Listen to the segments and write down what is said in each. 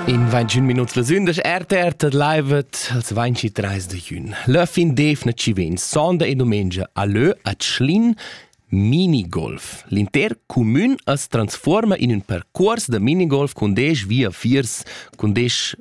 In 21 minuts le sün das RTR tet livet als 23 de jün. Le fin def na ci vegn sonda e domengia a lö a Tschlin Minigolf. L'inter cumün as transforma in ün percuors da minigolf cun 10 via viers cun 10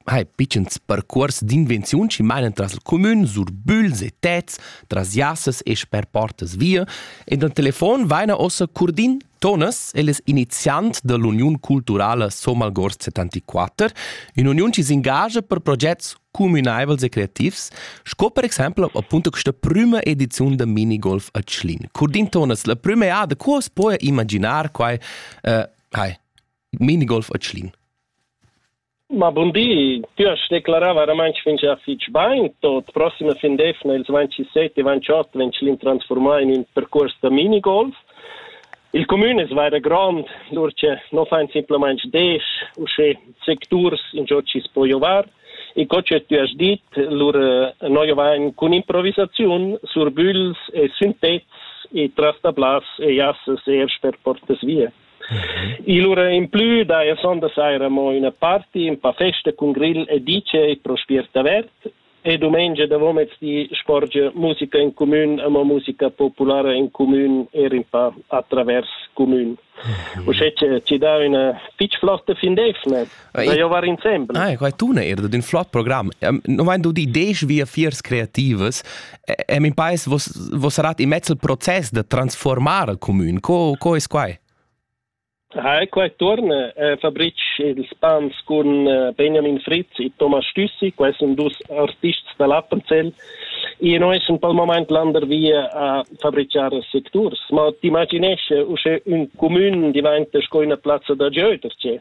hai pitschens percuors d'invenziun chi mainan tras il cumün sur bügls e tets, tras jassas e sper portas via, e dal telefon vaina ossa Curdin Tonas, el es iniziant da l'uniun culturala Somalgors 74, ün'uniun chi s'ingagia per progets cumünaivels e creativs, sco per exaimpel appunto questa prüma ediziun da minigolf a Tschlin. Curdin Tonas, la prüma eada, co as poja imaginar quai, uh, hai, minigolf a Tschlin? Ma bun di, tü hast declarà varamaing fingià fich bain. Tot prossima fin d'eivna, ils 27 e 28, vegn Tschlin transfurmà in ün percuors da minigolf. Il cumün es vaira grond, lur che no fain simplamaing desch, uschè secturs ingiò chi's po giovar. E co che tü hast dit, lur no giovain cun improvisaziun, surbügls e sün pezs e trastablas e jassas eir sper portas via. Il ura implü daja sonda saira amo üna party, ün pa festa cun grill e DJ pro spiert avert e dumengia davomezdi sporgia musica in cumün, amo musica populara in cumün, eir ün pa atravers cumün. Uschè chi dà üna fich flotta fin d'eivna. Da giovar insembel. Ah, quai tuna er da un flot program. No vain dudi desch via fiers creativas. E min pais vos vos sarat in mezzo proces da transformar il comün. Co co es quai? Hi, qua torna eh, Fabric ils pans con eh, Benjamin Fritz e Thomas Stüssi, quai sono dus artists da l'Appenzell e noi sono per il momento lander via a fabricare secturs, ma ti imaginesci usce un comune diventa sco una piazza da gioterci.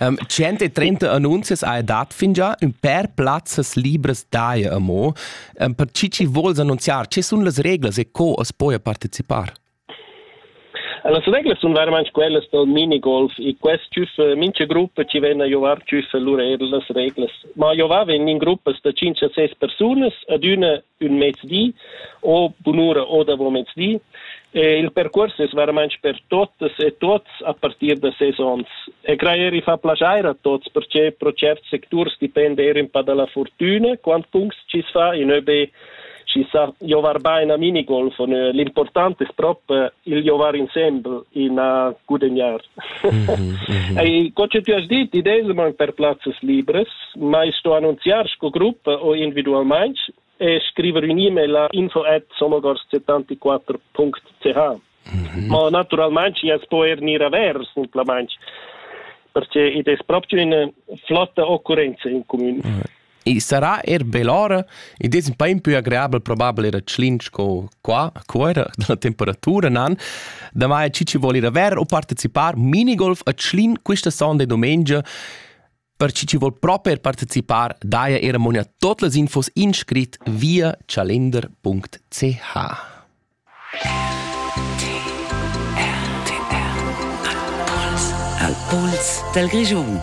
um, 130 annunzias ha dat fingià ün per plazzas libras daja amo. Um, per chi chi vuls annunziar, che sun las reglas e co as poja partecipar? Las reglas sun veramente quellas dal minigolf e quest tschüff mincha gruppa ci vegn a jovar tschüff lur er las reglas. Ma jovavan in gruppas da 5 6 persunas, ad üna ün mezdi o bunura o davo mezdi. E il percuors es veramaint per totas e tuots a partir da ses ons. E crajer i fa plaschair a tuots perche pro certs secturs dipenda eir ün pa da la fortüna, quant punct chi's fa, in ÖB chi sa giovar bain a minigolf, on, l'important es prop il giovar insembel in a gudegnar. E co che ti has dit, i deilman per plazzas libres, mai sto annunziar sco gruppa o individualmain e scriver un e-mail a info at somogors74.ch. Mhm. Ma naturalmain as po er gnir avers simplamain perché id es proprio üna flotta occurrenza in comün. I sarà eir bell'ora, id es ün pa impü agreabel probabel eir a Tschlin sco qua, a Cuera, da la temperatura nan. Damai chi vuol ir a ver u partecipar minigolf a Tschlin quista sonda e dumengia, per chi ci vuol proper partecipar, daja eir ammonia tot las infos in scrit via chalender.ch. Al puls dal Grischun.